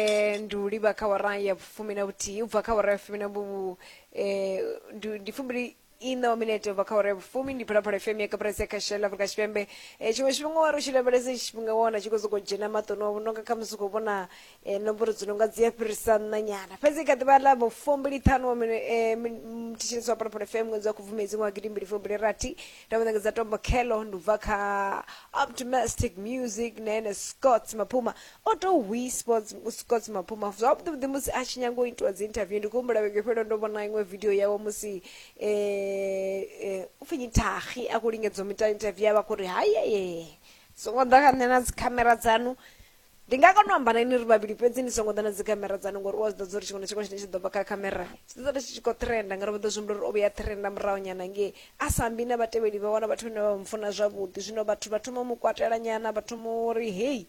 eh, ndi u livha kha wara ya fumi na vhuthihi u bva kha wara ya fumi na vhu eh, ndi ndi fumbili ina wa minete u bva kha wara ya vhufumi ndi phalaphala fm ya kapresi ya kashela afrika tshipembe eh, tshiṅwe tshifhinga wari u tshi lavhelesa itshi tshifhinga wa wana tshi khou sokou dzhena maṱoni wavho nonga kha musi u khou vhona eh, nomboro dzi nonga dzi a fhirisa nṋa nyana fhedzi kha ḓivha ḽa vhufumbili ṱhanu wa mine- eh, min- mm, thetshelesi wa phalaphala fm ṅwedzi wa khubvumedzi ṅwaha gidimbili fumbili rathi nda mu ṋekedza tombo khelo ndi u bva kha optimistic music na ene scott maphuma O tou hwii Sports Scots Maphuma zwavhuḓi vhuḓi musi a tshi nyaga u itiwa dzi interview ndi khou humbula vhege fhelo ndo vhona iṅwe video yawe musi um upfhi nyithagi a khou lingedza u mita interview ya vha khou ri hayeye songo ḓa kha nṋe na dzikhamera dzanu ndi nga kona u amba na ini ri vhavhili fhedzi ni songo ḓa na dzikhamera dzanu ngori u a zwi ḓadza uri tshiṅwe na tshiṅwe tshine tshi ḓo bva kha khamera tshi ḓo ḓa tshi tshi khou trenda ngauri vha ḓo zwi humbula uri o vhuya trenda muraho nyana ngei a sa ambi na vhatevheli vha wana vhathu vhane vha mu funa zwavhuḓi zwino vhathu vha thoma mu kwatelanyana vha thoma uri heyi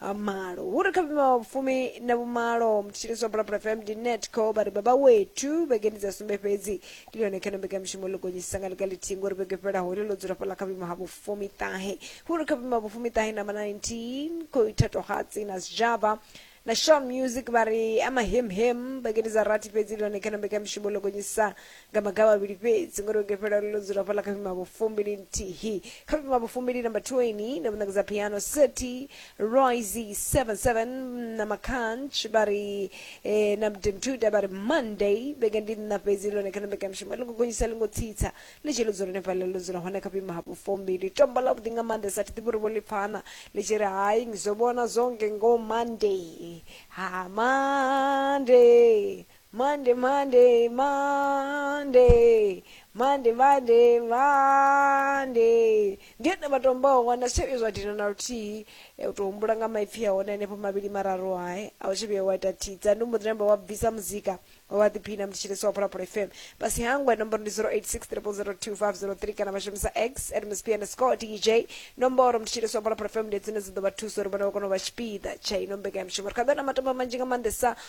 ha malo hu ri kha vhima wa vhufumi na vhumalo mthetshelesi wa bulabula fm ndi netco vha ri baba wethu vhegeni dza sumbe fhedzi ndi lone khana mbekanyamushumo ḽo gonyisisa nga ḽiga ḽithihi ngori vhege fhelaho ḽi ḽo dzula fhaḽa kha vhima ha vhufumi ṱahe hu ri kha vhima ha vhufumi ṱahe namba 19 khou ithatwa hatsi na sijava na shaw music vha ri amahemhem vhegeni dza rathi fhedzi ndi lone khana mbekanyamushumo ḽo gonyisisa nga maga mavhili fhedzi ngori u gefhela ḽo dzula fhaḽa kha vhimavho fumbili nthihi kha vhimavho fumbili namba 20 na vhuṋekedza piano city royce 77 na makanch vha ri eh, na mdemtuda vha ri monday vhege ndi nna fhedzi lone kana mbekanyamushumo ḽi ngo gonyisa ḽi ngo tsitsa ḽi tshi ḽo dzula hone fhaḽa ḽo dzula hone kha vhimavho fumbili tombo ḽa vhuḓi nga maanḓa sa thi ḓivhi uri vho ḽi pfana ḽi tshi ri hai ngizwo vhona zwonge ngo monday ha monday Monday, Monday, Monday, Monday, Monday, Monday. Ndi ene matombawo wana sewe zwa dina na luthihi e u tou humbula nga maipfi a hone henefho mavhili mararu ae a u tshi vhuya wa ita thidza ndi mboḓi namba wa bvisa muzika wa vha ḓiphina mthetshelesi wa phalaphala fm fhasi hangwe nomboro ndi 0863002503 kana vha shumisa x at msp underscore dj nomboro mthetshelesi wa phalaphala fm ndi dzine dza ḓo vha thusa uri vhone vha kone u vha tshipiḓa tsha ino mbekanyamushumo ri kha ḓo na matomba manzhi nga maanḓesa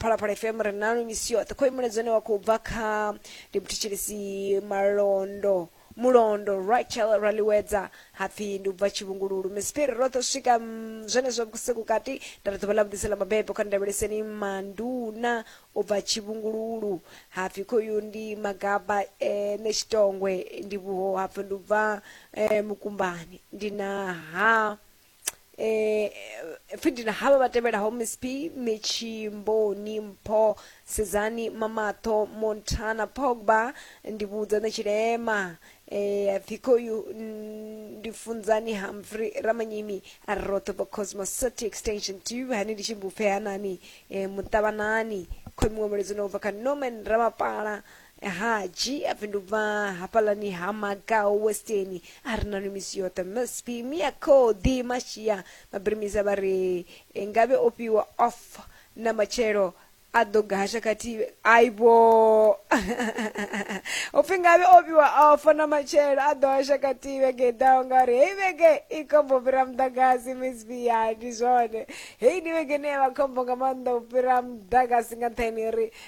phalaphala fm ri nanu misi yoṱhe khoimuledzo une wa khou bva kha ndi muthetshelesi malondo mulondo rachel raliwedza hapfi ndi u bva tshivhungululu misipiri roṱhe u swika mm, zwenezwo vhusiku kati nda ri ḓuvha ḽa vhuḓisa ḽa mabebo kha ndavheleseni manduna u bva tshivhungululu hapfi khoyu ndi magaba eh, ne tshitongwe ndi vhuho hapfi ndi u bva eh, mukumbani ndi na ha eh fidina havha vha tevhelaho miss p michimboni mpho sedzani mamatho montana pogba ndi vhudza na tshilema eh thikoyu ndi funzani humphrey ramanyimi roṱhe vho cosmos city extension tv hani ndi tshi mbupfe hanani eh muṱavhanani khomiwa muledzino ubva kha norman ramapala Haji a bvi ndubva hafhaḽani ha Makau Westeni a ri na nwi misi yoṱhe msp mia khoḓi mashia mabirimisa vha ri ngavhe o fhiwa off na matshelo a ḓo gasha khathihi aibo u pfhi ngavhe o fhiwa off na matshelo a ḓo hasha khathihi vhege i ḓaho ngauri heyi vhege i khombo u fhira muḓagasi msp ya ndi zwone heyi ndi vhege ine ya vha khombo nga maanḓa u fhira muḓagasi nga nṱhani uri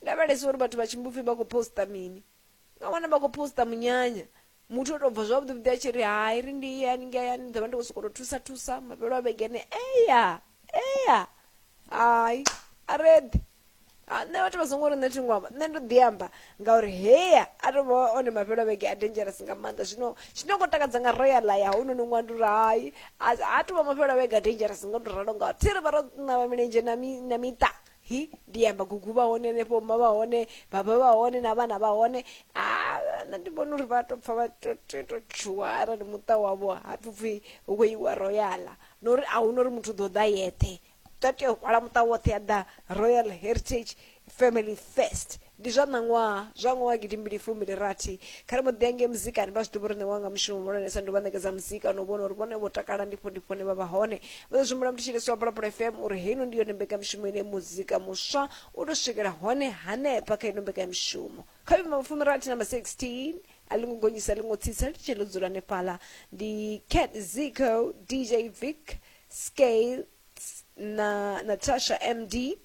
Lavhelesa uri vhathu vha Tshimbupfi vha khou poster mini. U nga wana vha khou poster munyanya, muthu o tou bva zwavhuḓi-vhuḓi a tshi ri, Hai, ri ndi ye haningei hayani, ndi ḓo vha ndi khou sokou tou thusa-thusa mafhelo a vhege ene. Eya! Eya! Hai, a ri eḓi. Ha, nṋe vhathu vha songo ri nṋe thi ngo amba, nṋe ndo ḓi amba ngauri heya a tou vha one mafhelo a vhege a dangerous nga maanḓa. Zwino tshine khou takadza nga royal ya hounoni ṅwana ndi uri hai, ha tou vha mafhelo a vhege a dangerous nga u tou ralo ngauri thi ri vha ro ṋawa milenzhe na miṱa. hi ndi ya magugu vha hone henefho ma vha hone baba vha hone na vhana vha hone nṋe ndi vhona uri vha to pfa vha to tshuwa arali muṱa wavho ha pfi pfi hu khou iwa royala na uri a huna uri muthu ḓo ḓa yeṱhe ta tea u hwala muṱa woṱhe ya ḓa royal heritage family first Ndi zwa ṋaṅwaha zwa ṅwaha wa gidimbili fumi ndi rathi, kha ri mbo ḓi ya ngei muzikani. Vha zwi ḓivha uri nṋe wanga mushumo muhulwanesa ndi u vha ṋekedza muzika na u vhona uri vhone vho takala, ndi pfo ndi pfo hune vha vha hone. Vho ḓo zwi humbula muthu Tshilisa wa Phalaphala FM uri heino ndi yone mbekanyamushumo ine muzika muswa u tou swikela hone hanefha kha ino mbekanyamushumo. Kha vhuimo ha vhufumirathi na ma 16, a ḽi ngo gonyisa a ḽi ngo tsitsa, ḽi tshee ḽo dzula hanefhaḽa. Ndi Cat Zico, DJ Vic, Skales na Natasha MD.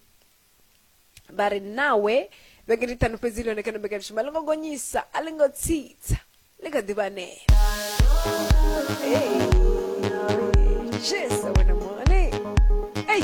vha ri nawe vhege ndi ṱhanu fhedzi ḽone kana mbekani shuma ḽi ngo gonyisa a ḽi ngo tsitsa ḽi kha ḓivha anea jesu wena mone ei